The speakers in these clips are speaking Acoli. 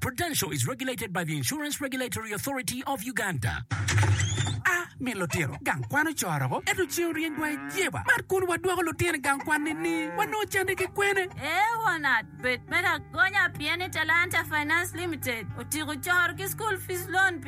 Prudential is regulated by the Insurance Regulatory Authority of Uganda. A. Min lutino gang kwan ocoro-go, ento ceng oryengwa i jeba. Mar kun wadwoko lutino i gang kwan nini? Wanongo cente ki kwene? A. Wanat bed me lagonya pien ni Talanta Finance Limited otiko coro ki school fees loan pi.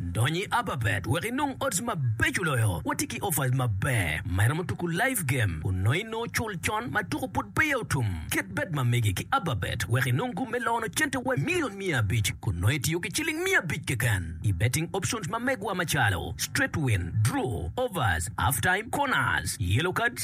Dony i Ababet wek inong odds mabeco loyo. Watye ki offers maber ma iromo tuku live game onongo i nongo cul con ma tuku pud peya otum. Ket bet ma mege ki Ababet wek inong gum me lono cente wa i milion miya abic kun nongo itiyo ki ciling miya abic keken i betting options ma megwa macalo straight win, draw, overs, half time, corners, yellow cards,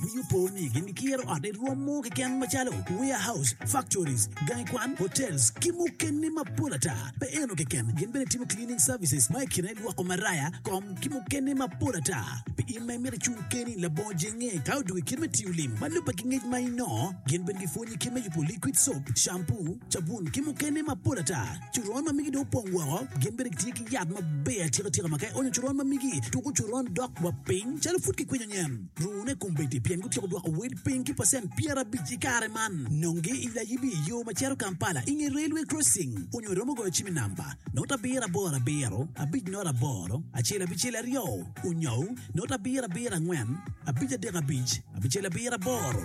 Winyo po ni gin gikiro ot i rwom mo keken macalo warehouse, factories, gangi kwan, hotels, ki mukene mapol ata. Pe eno keken, gin bene timo cleaning services ma i kine lwoko maraya, kom, ki mukene mapol ata. Pi in ma imito icung keni labongo jenge ka odoko i kit me tiyo lim ma lubbe ki ngec ma inongo, gin bene gipwonyi kit me yubo liquid soap, shampoo, cabun, ki mukene mapol ata. Coron ma migi dong opong woko, gin bene gitye ki yat maber atika tika ma ka ionyo coron ma migi, tuko coron dok wa piny calo pud kikwinyo nyen. Luwune kombeddi pien gutyeko dwoko wel piny ki pacent pyerabic i kare man. Nongi i layibi i yo ma cito Kampala i nge Railway Crossing onyo iromo goyo cim i namba note abiro aboro abiro abic note aboro acel abicel aryo onyo note abiro abiro angwen abic adek abic abicel abiro aboro.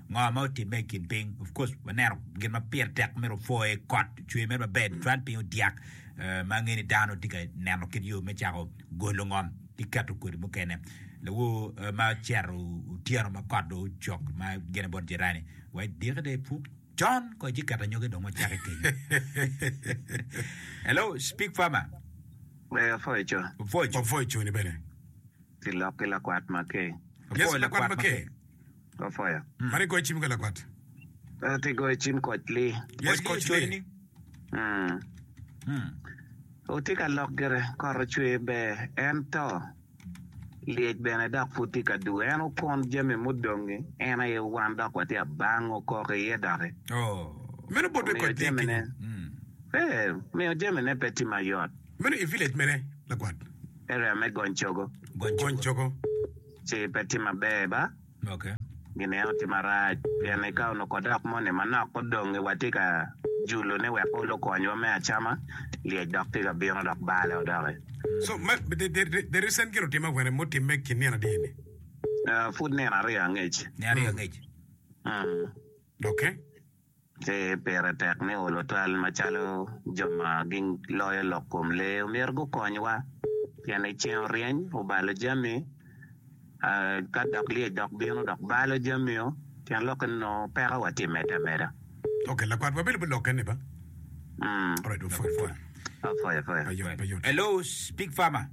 Ngo ma otimme i kin piny? Of course waneno gin ma pire tek mere opwoye, kot ocwe mere maber, cwan piny odyak ma ange ni dano tye ka neno kit yo me cako golo ngom ki keto kodi mukene. Lawor ma ocito otyeno ma kot dong ocok ma gine bot jirani wa idiki dong ipuk con ko ici keto anyogi dong ocake kenyo. Hello, speak farmer. Ee, apwoco. Opwoco. Opwoco ni bene. Kilok ki lakwat Makee. Yes, Apwoyo lakwat lakwat Makee. Makee. Go fire. Mani goyo cim ka lakwat. Ento ti goyo cim koc li. Yes, koc li. Cwiny-ni. Mm. Mm. Wutye ka lok gire, kot ocwe ber, ento lyec bene dok pud tye ka duwe. En okun jami mudongi, en aye wan dok watye abango koko iye doki. Oh. Meno bot me Omiyo koc li jamine, kenyo. Mm. ee, miyo jamine pe tye mayot. Meno i village mene, lakwat? Area me Gony Cogo. Gony Gony cogo. cogo. ci pe tye maber ba, gineno tye marac pien ni ka onongo odok moni manok odongi watye ka julo ne wek olo konywa me acama, lyec dok tye ka bino dok bale o doki. So ma the recent gin otimme akwene mutimme ki nino adye ni. Pud nino aryo angec. Nino aryo angec. Okay. Pe pire tek me olo twal macalo jo ma giloyo lok kom lee omyero gukonywa pien ni ceng oryeny obalo jami, ka dok lyec dok bino dok balo jamio, tyen lok eni nongo peko wa tye medde ameda. Ok, lakwat wabedo bot lokke ni ba. Alright, wapwoyo pwoya. Hello, Big Farmer.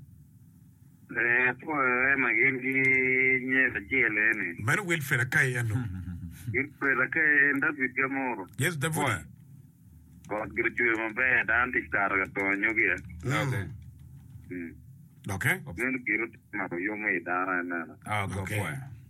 Ee, apwoyoe ma gin ki nyer acel eni. Meno wil peda kayi eno. Wil peda kayi en David ga muru. Yes, Davudi. Pwony, Got gire ocwer maber, dano tic kato ka to anyogi e. Doke. Doke. Meno gire otimako yom me i dano, aye meno. Doke.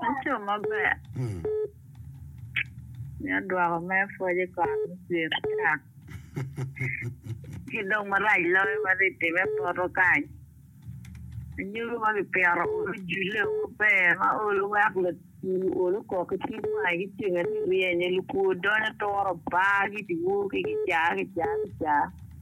Laco maber mito dwoko mere pwod i kare me pyere ata, ci dong marac loyo ma ri timme poto kany. Anyogi ma kipito olo julle o maber ma olo weko lacu olo kok ki cwiny wange ki cengeni ryeny aye lukwo donyo turo baa ki dye wor ki kica kica kica.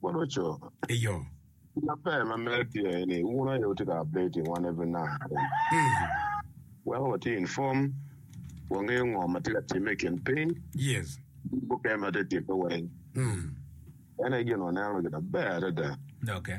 Kono co. Eyo. Gina ber ma medo tye aye ni wun aye wutye ka updating wan every night. Weko watye inform, wangeyo ngo ma tye ka timme i kin piny. Yes. Ki mukene ma tye timme weng. Meno aye gin waneno gina ber adada. Okay.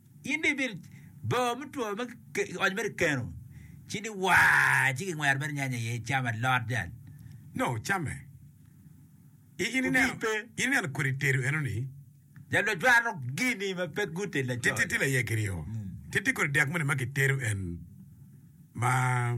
In dong ibido bor me two ma kionyo mere i keno, ci ni waa, ci kingwero mere nyanya iye, icamo alot jal. Nongo wucamme. I, in Obi ineno, pe. in ineno kodi tedo enoni? Jal ma cwano gini ma pe gute Ti, ti, laco. ti laye kiryo. Ti, ti kodi dek moni ma kitedo en ma.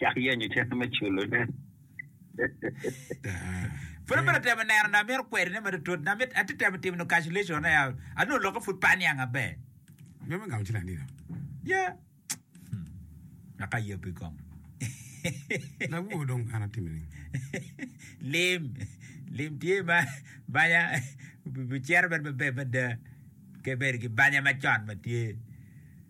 Cak yenyo cente me culone. Pud abito temo neno na mito kweri ne matutut na mit ati temo timo no calculation ne anu loke pud pa niang aber. Nya me ngamo cilang dino. Ya. Naka ye pi kom. La wo dong ana timi ni. Lim lim tye ma banya bi cero ben maber mada ke ber ki banya macon matye.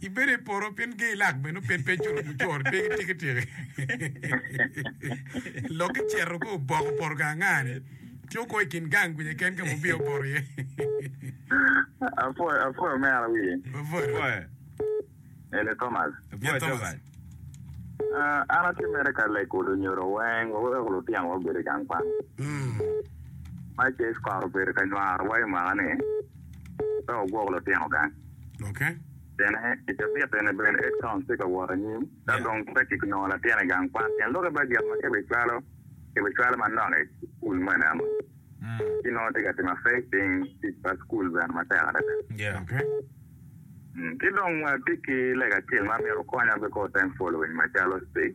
Ibedo i poro pien ge ilak bene oped pe icuto mu coro pe ki tiki tiki. Lok ki ceto ko oboko poto ka angani tye oko ikin gang gwinya ken ka mubiyo oboto iye. Apwoyo apwoyo mera wiye. Apwoyo. Apwoyo. Ele Thomas. Apwoyo Thomas. Uh, an atye mere ka lego lunyodo weng wa weko lutino wa obed i gang kwan. Mm. Ma Jeff kare obedo ka nywaro wa i mwaka ni. Ka wagwoko lutino gang, pien i cabit eni bene Edcom tye ka wot anyim. Ka dong pe kiknongo latin i gang kwan, tyen lok i bajet ma kibicwalo kibicwalo manok i cukul mo eneno. Ci nongo tye ka timo afec piny tic pa cukul bene matek adada. Ki dong watye ki lega acel ma myero okonya beko thank following macalo.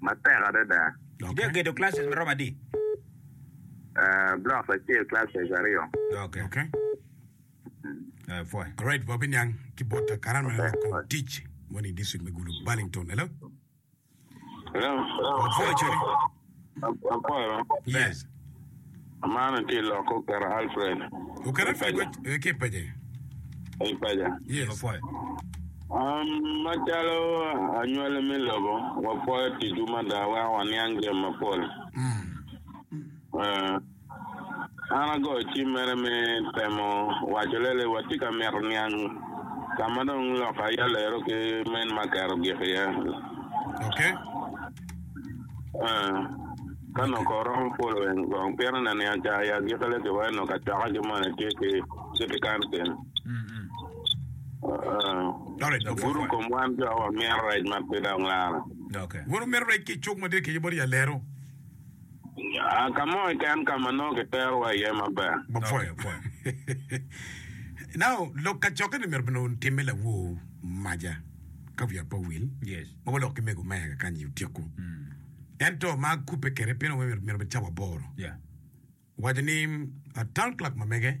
matek adada. Itye ka gedo classes maromo adi? Ah, blocks acel classes aryo. Okay. Okay. Ah, pwoya. Alright, wa biniang ki bot Karan ma lok kom tic moni i district me Gulu, Burlington. Hello? Hello? Wa pwoya cone. Akwero. Yes. Amana tye lok oketo Alfred. Oketo Alfred eh, ki paja. Ei paja. Yes. Wapwoyo. Um, macalo anywali me lobo, wapwoyo ticwu mada, weko waniang jami mapol. Mm. Uh, An agoyo cim mere me temo waco lele watye ka mito niang ka ma dong lok aye alero ki men ma aketo gik iye. Ee, ka noko oromo polo en kong pire na niang ca aye agikki le ki weko noko acoka ki moni tye ki city council. Ee, gudo kom wan jo wamito rec ma pe dong laro. Wan wamito rec ki cuk madit keye bot ya lero. Ka mo keken ka ma nongo kiterowa iye maber. Bapwoyo pwony. Now, lok kacokke-ni myero bene otimme lawor maja ka wiya pe owil, ma waloko ki mego me eka kany-nyi otyeko. Ento ma akubbe kwede pien awengo myero obed cawa aboro, owaco ni, Town clerk mamege,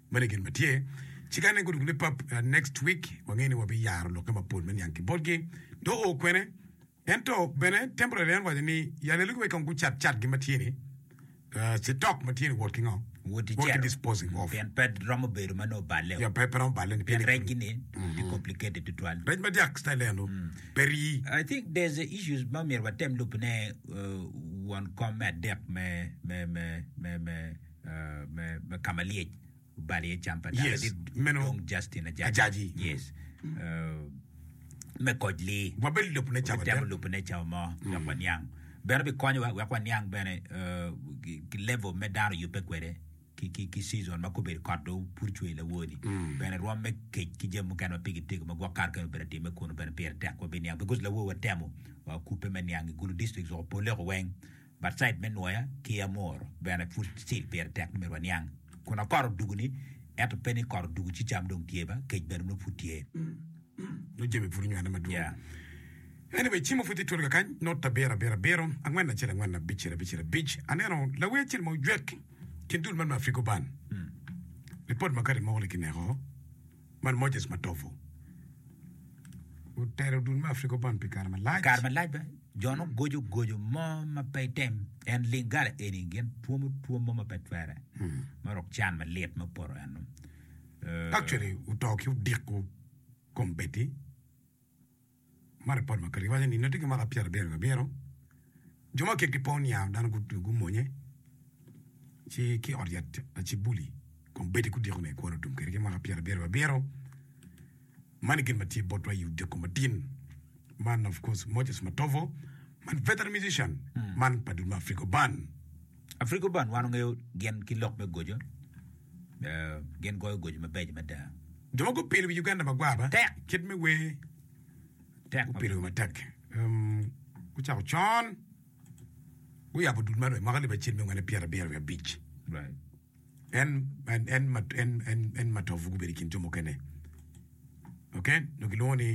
Meno gin ma tye. Ci kane gudugo ni pap, next week wangeyo ni wabiyaro lokke mapol me niang ki botgi. Dong oo kwene. Ento bene temporary en waco ni ya lelu giwegi kong gucat cat gi ma tye ni, uh, stock ma tye ni wot ki ngo? Wot ki celo. disposing of. Pien pe romo bedo ma nongo balle. Ya pe pe romo balle ni Pien rec gini tye complicated tutwal. Rec ma dyak style eno pe rii. I think there's a issues ma myero watem lubone uh, won kom me adek me me me me me me kama lyec obalo iye cam pa dano yes. dit meno dong Justin ajaji, ajaji. yes uh, me koj li wabedo lopne cawa watemo lopne cawa mo mm. wek waniang bene bikonyowa wek waniang bene uh, ki level me dano yubbe kwede ki, ki, ki season ma kubedo kot do pur cwe lawoni mm. bene rwom me kec ki jam mukene ma pigi tego ma gwok kar kene obedo time kuno bene pire tek wa biniang because lawo watemo uh, kupe me niang i gulu district oko poleko weng Batsaid me nwoya ki amor bene pud still pire tek ni myero waniang kun akor odugu ni ento pe ni kor odugu ci cam dong tye ba kec bene nongo pud tye nongo jami pud onywene madwong yeah. anyway cimo pud tye twolo kakany not abiro abiro abiro angwen acel angwen abicel abicel abic aneno lawer acel ma ojwek kin dul man me Afrigo band report makati mogo ni kineko Man Moses Matovu otero dul me Afrika Bond pi kare malac. Kare malac bene jo nongo goco goco mo ma pe item en Lingala eni gin twomo twom mo ma pe twere ma rok can malit ma poto eno. Actually oto ki odiko kom Betty. Ma ripot ma Kelly waco ni nongo tye ki mwaka pyerabiro nyo abiro, jo ma kekgi pe oniang dano gutugo gumonye ci ki i ot yat lacib buli kun bedi gudiko ni ekwaro tum kwede ki mwaka pyerabiro abiro. Man gin ma tye botwa i odiko matin man of course Moses Matovo man veteran musician man pa dul ma Afriko Band. Afriko Band wan ongeyo gin ki lok me goco. Gin goyo goco mabeco mada. Jo ma gupielo wi Uganda magwar matek kit me wer gupielo wer matek gucako con guyabo dul man mwaka libbe acel me ngwen pyera abiro wiye abic en matovu gubedo ikin jo mukene ok nongo kilwongo ni.